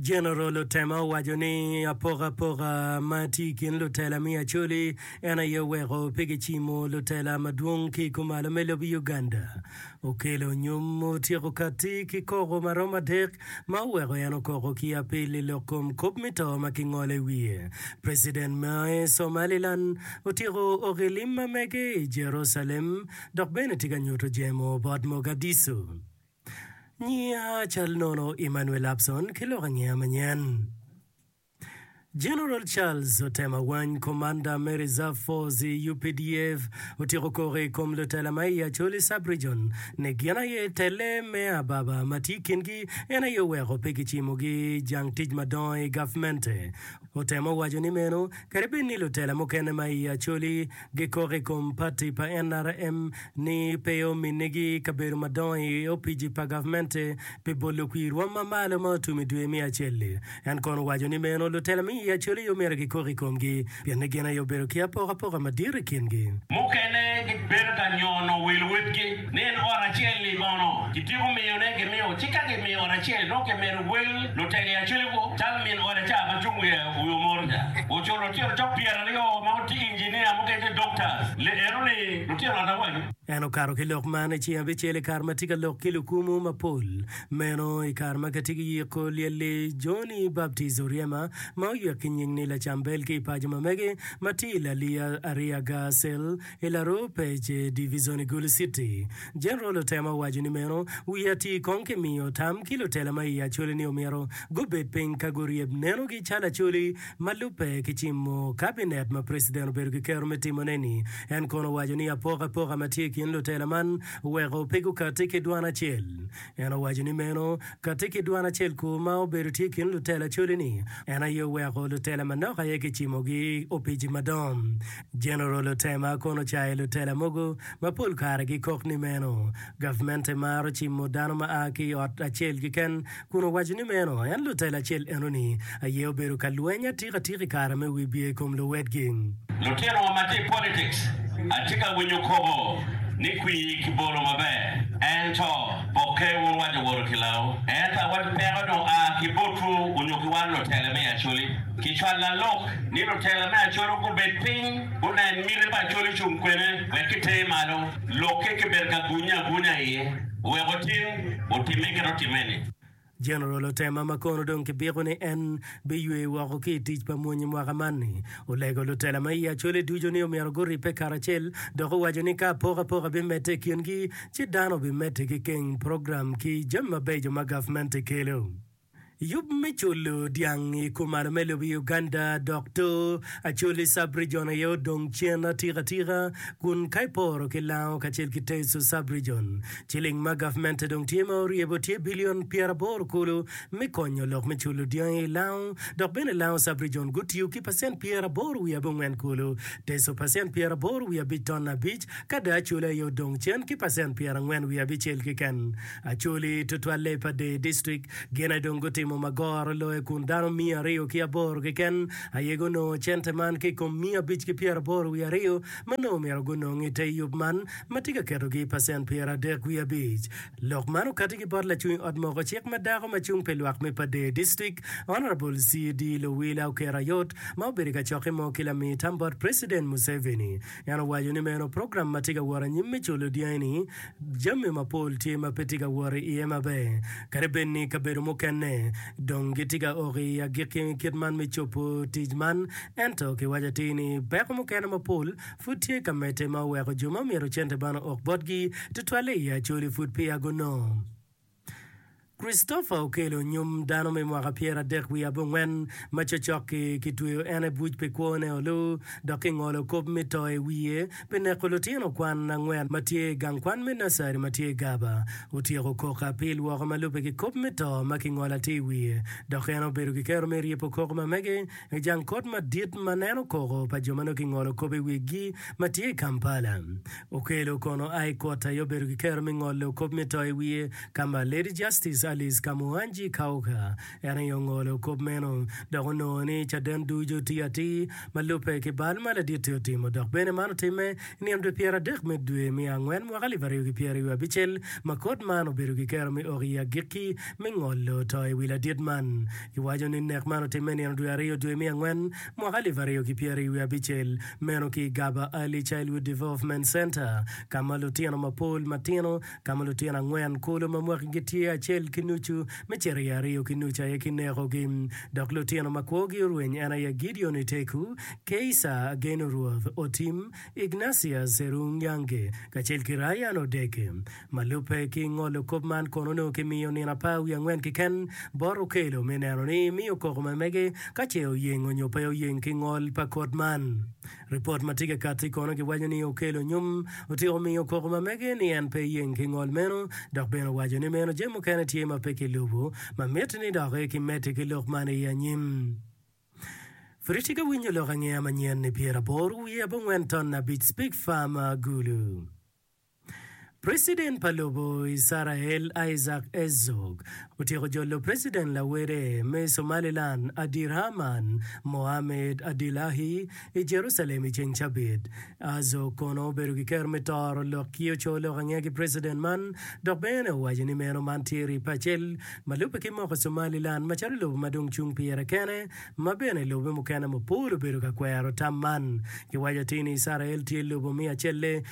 Jeneral Otema owaco ni apokapoka ma tye i kin lutela me Acholi en aye oweko pe kicimo lutela madwong ki i kumalo me lobo Uganda. Okelo nyom otyeko katti ki koko ma romo adek ma oweko en okoko ki apil i lok kom kop me to ma kingolo i wiye. President me Somaliland otyeko ok i lim ma mege i Jerucalem dok bene tye ka nyuto jemo bot Mogadishu. Nyinga cal nono Emmanuel Lapson ki lok angeya manyen. General Charles otema wany Commander me Reserve Force i updf otyeko koko i kom lutela ma i Acholi Sub-Region ni gin aye tele me ababa ma tye i kingi en aye oweko pe gicimogi jang tic madongo i gavmente. Otemo waco ni meno kadi bed ni lutela mukene ma i Acholi gikok i kom pati pa nrm ni pe ominnigi kabedo madongo i opici pa gavmente pi bolo kwir rwom ma malo ma otum i dwe me acel-li. En kono owaco ni meno lutela me i Acholi aye omyero gikok i komgi pien ni gin aye obedo ki apokapoka madit i kingi. Mukene gibedo ka nyono wil witgi. Nen ot acel-li mono kityeko miyone gimiyo, ci ka gimiyo ot acel, dong kimedo wel lutegi acel gu, calo min ode ca ma cung wiye wi omoro ca. Oculo lutino cok pyeraryo ma gutye injiniya, mukene tye doctors, liero ni lutino ot awaco. En okato ki lok man, ci abicel i kare ma tye ka lok ki lukumu mapol meno, i kare ma kitye ki yiko lyel-li, Johnny Baptist Oryema, ma oyek ki nying ni Lacambel ki i paco ma mege ma tye i Laliya, Ariaga, Cell. I laruu pec Division i Gulu City, General otemo waco ni meno wiye atir kong ki miyo tam ki lutela ma iye Acholi ni omyero gubed piny ka guryeb nenogi calo Acholi ma lubbe ki cimo Cabinet ma President obedo ki kero me timone ni. En kono owaco ni apokapoka ma tye i kin lutela man oweko pe gukati ki dwan acel. En owaco ni meno kati ki dwan acel ku ma obedo tye i kin lutela Acholi ni en aye oweko lutela manok aye ki cimogi opici madongo. Jeneral Otema kono ocayo lutela mogo ma pol kare gikok ni meno gavmente maro cimo dano ma a ki i ot acel keken kun owaco ni meno en lutela acel enoni aye obedo ka lweny atika atika i kare me wibye i kom luwotgi. Lutinowa ma tye i politics, atye ka winyo kobo ni kwir ki bolo maber, ento pokke wun wa jo woro kilawu. Ento awaco peko dong a ki botwu onyo ki wan lutela me Acholi. Kicwalo lalok ni lutela me Acholi gubed piny gunen miti pa Acholi ocung kwene wek kitere malo. Lokke kibedo ka gunye agunya iye oweko otim otimme kit otimme-ni. Jeneral Otema ma kono dong kibiko ni en biywe woko ki i tic pa mony i mwaka man-ni, olego lutela ma i Acholi ducu ni omyero guribbe karacel dok owaco ni ka apokapoka bimedde i kingi ci dano bimedde ki keng program ki jami mabeco ma gavmenti kelo. Yub me culu dyang i kuman me lobo i Uganda dok to Acholi Sub-Region aye odong cen atika atika kun ka iporo ki Lango kacel ki Teso Sub-Region, ciling ma gavmente dong tye ma oryebo tye bilion pyeraboro kulu me konyo lok me culu dyangi i Lango dok bene Lango Sub-Region gutiyo ki pacent pyeraboro wiye abongwen kulu Teso pacent pyeraboro wiye abic ton abic ka dong Acholi aye odong cen ki pacent pyerangwen wiye abicel keken Acholi, tutwalle pa Dei District, gin aye dong gutimo ma goro loye kun dano miya aryo ki aboro keken aye gunongo cente man ki i kom miya abic ki pyeraboro wiye aryo ma nongo myero gunong i te yub man ma tye ka ketogi i pacent pyeradek wiye abic. Lok man okati ki bot lacwiny ot moko cik ma dako ma cung pi lwak me pa Dei District, Honourable CD. Luwila Okerayot ma obedo i kacokke mo ki lami tam bot President Museveni. En owaco ni meno program ma tye ka wot anyim me culo dyangi-ni, jami mapol tye ma pe tye ka wot iye maber. Kadi bed ni kabedo mukene dong gitye ka oko i agikki kit man me cobo tic man, ento kiwaco atir ni peko mukene mapol pud tye ka medde ma oweko jo ma myero cente man ook botgi, tutwalle i Acholi, pud peya gunongo. Christopher okelo nyom dano me mwaka pyeradek wiye abongwen ma cocok-ki kitweyo en i buc pi kwone olu dok kingolo kop me to i wiye pi neko lutino kwan angwen ma tye i gang kwan me nursery ma tye i Garber. Otyeko kok apil woko ma lubbe ki kop me to ma kingolo atir i wiye dok en obedo ki kero me ryepo koko ma mege i jang kot madit ma neno koko pa jo ma nongo kingolo kop i wigi ma tye i Kampala. Okello kono a i kot aye obedo ki kero me ngolo kop me to i wiye ka ma Lady Justice Alice Kamuhanji Kauka en aye ongolo kop meno dok onongo ni caden ducu otiyo atir ma lubbe ki bal ma laditte otimo dok bene man otimme i nino dwe pyera dek me dwe me angwen mwaka alip aryo ki pyera wiye abicel ma kot man obedo ki kero me ok i agikki me ngolo to i wi ladit man. Giwaco ni nek man otimme i nino dwe aryo dwe me angwen Mwaka alip aryo ki pyeraryo wiye abicel meno ki i Gaba Early Childhood Development Centre ka ma lutino mapol matino ka ma lutino angwen kulu ma mwaki gitye acel ki nucu me cito i aryo ki nucu aye kinekogi dok lutino ma kwogi orweny en aye Gideon Oteku, Keisa Ageno Ruoth, Otim, Ignatius Serunyange kacel ki Ryan Odeke. Ma lubbe ki ngolo kop man kono onongo kimiyo nino apar wiye angwen keken bot okelo me neno ni imiyo koko memege ka ce oyeng onyo pe oyeng ki ngol pa kot man. Ripot ma tye ka katti kono giwaco ni okelo nyom otyeko miyo koko mamege ni en pe yeng ki ngol meno dok bene owaco ni meno jami mukene tye ma pe kilubu ma miti ni dok ki medi ki lok man i anyim. Friti ka winyo lok angeya manyen ni pyeraboro wiye abongwen ton abic Spig Farm Agulu. President pa lobo Icrael Isaac Herzog otyeko jolo President lawede me Somaliland Abdirahman Mohamed Abdillahi i Jerucalem i ceng cabit. Herzog kono obedo ki kero me toro lok ki oco lok ange ki President man dok bene owaco ni meno man tye rip acel ma lubbe ki moko Somaliland macalo lobo ma dong cung pire kene ma bene lobe mukene mapol obedo ka kwero tam man. Kiwaco atir ni Icrael tye lobo me acelle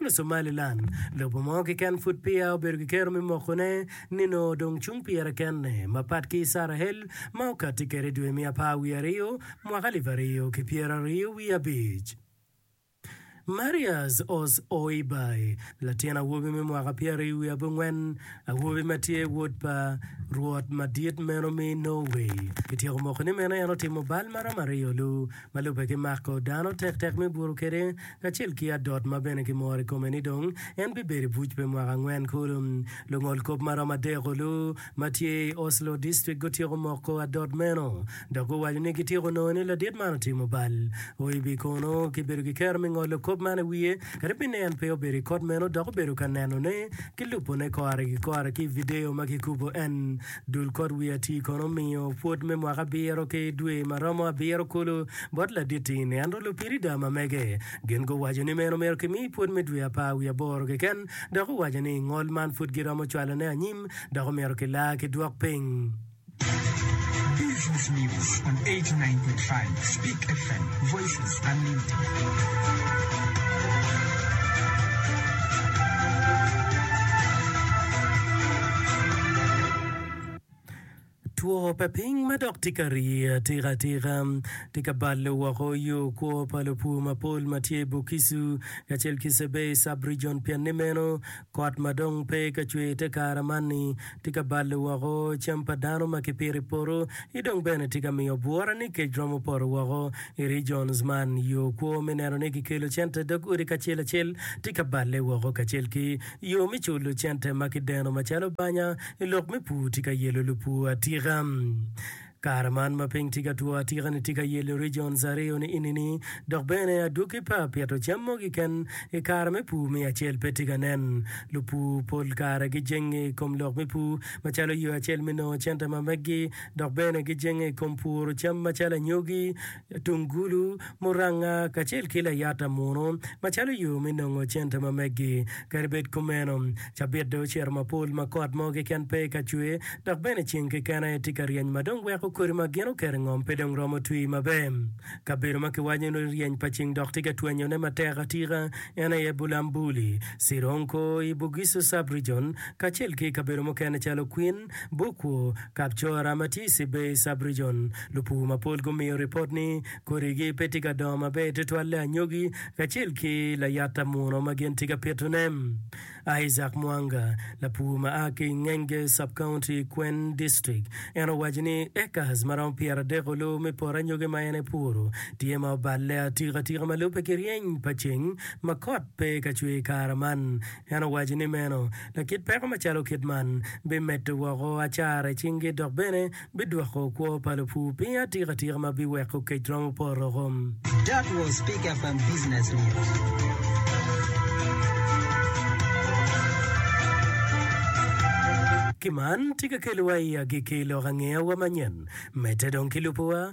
Me Somaliland, lobo mo keken pud peya obedo ki kero me mokone, nino dong cung pire kene, mapat ki Icarahel ma okatti kwede i dwe me apar wiye aryo, mwaka alip aryo ki pyera aryo wiye abic. Marius Oz-Oibay, latin awobi me mwaka pyera aryo wiye abongwen, awobi ma tye wod pa Rwot madit meno me Norway, kityeko mokone meno en otimo bal maromo aryo-lu, Ma lubbe ki mako dano tektek me buto kwede, kacel ki adot ma bene kimoro i kome ni dong en bibedo i buc pi mwaka angwen kulu. Lungol kop ma romo adek-olu ma tye i Oslo District gutyeko moko adot meno dok guwaco ni gityeko nongo ni ladit man otimo bal. OIB kono kibedo ki kero me ngolo kop man i wiye kadi bed ni en pe obedo i kot meno dok obedo ka nenone ki lubone kore ki kore ki i vidio ma kikubo en Dul kot wi atii kono omiyo pwod me mwaka abiro ki dwe ma romo abiro kulu bot ladit-tini. Ento lupirida ma mege gin guwaco ni meno myero kimi pwod me dwe apar wi aboro keken dok owaco ni ngol man pwod giromo cwalone anyim dok omyero kilaa ki dwok piny. Two pa piny ma dok tye ka rii atikatika tye ka balo woko yo kwo pa lupur mapol ma tye i Bugisu kacel ki Sebei sub-rijion pienni meno kot ma dong pe ka cwer te kare man-ni Tye ka balo woko cam pa dano ma kipito i poto, ci dong bene tye ka miyo bwura ni kec romo poto woko. I regions man, yo kwo me neno ni kikelo cente i dog odi kacel acel tye ka balle woko kacel ki yo me culo cente ma kideno macalo banya i lok me pur tye ka yelo lupur atika. Kare man ma piny tye ka two atika-ni tye ka yelo regions aryo ni enini dok bene adwogi pe apito cam mogo keken i kare me pur me acel pe tye ka nen. Lupur pol kare gijenge i kom lok me pur macalo yo acel me nongo cente ma meggi dok bene gijenge i kom puro cam macalo anyogi, tungulu, muranga, kacel ki layata munu macalo yo me nongo cente ma meggi. Kadi bed kumeno, cabit dong ocito mapol ma kot mo keken pe ka cwer dok bene ceng keken aye tye ka ryeny ma dong weko kodi ma gin oketo i ngom pe dong romo twi maber. Kabedo ma kiwaco ni ryeny pa ceng dok tye ka twenyone matek atika en aye Bulambuli, Sironko i Bugisu Sub-Region, kacel ki i kabedo mukene calo Kwin, Bukwu, Kapcora ma tye i Sibei Sub-Region, lupur mapol gumiyo ripot ni kodigi pe tye ka dongo maber tutwalle anyogi kacel ki layata muno ma gin tye ka pitone. Isaac Mwanga, lapur ma a ki i Ngenge Sub-County, Kween District, en owaco ni acres ma romo pyeradek olu me poto anyogi ma en epuro tye ma oballe atika tika ma lubbe ki ryeny pa ceng ma kot pe ka cwer i kare man. En owaco ni meno, lakit peko macalo kit man, bimedo woko acara i cinggi dok bene bidwoko kwo pa lupur piny atika tika ma biweko kec romo poto woko. That was Big FM Business News. Ki man, tika kelowa i agikki i lok angeya wa manyen? Medde dong ki lubo wa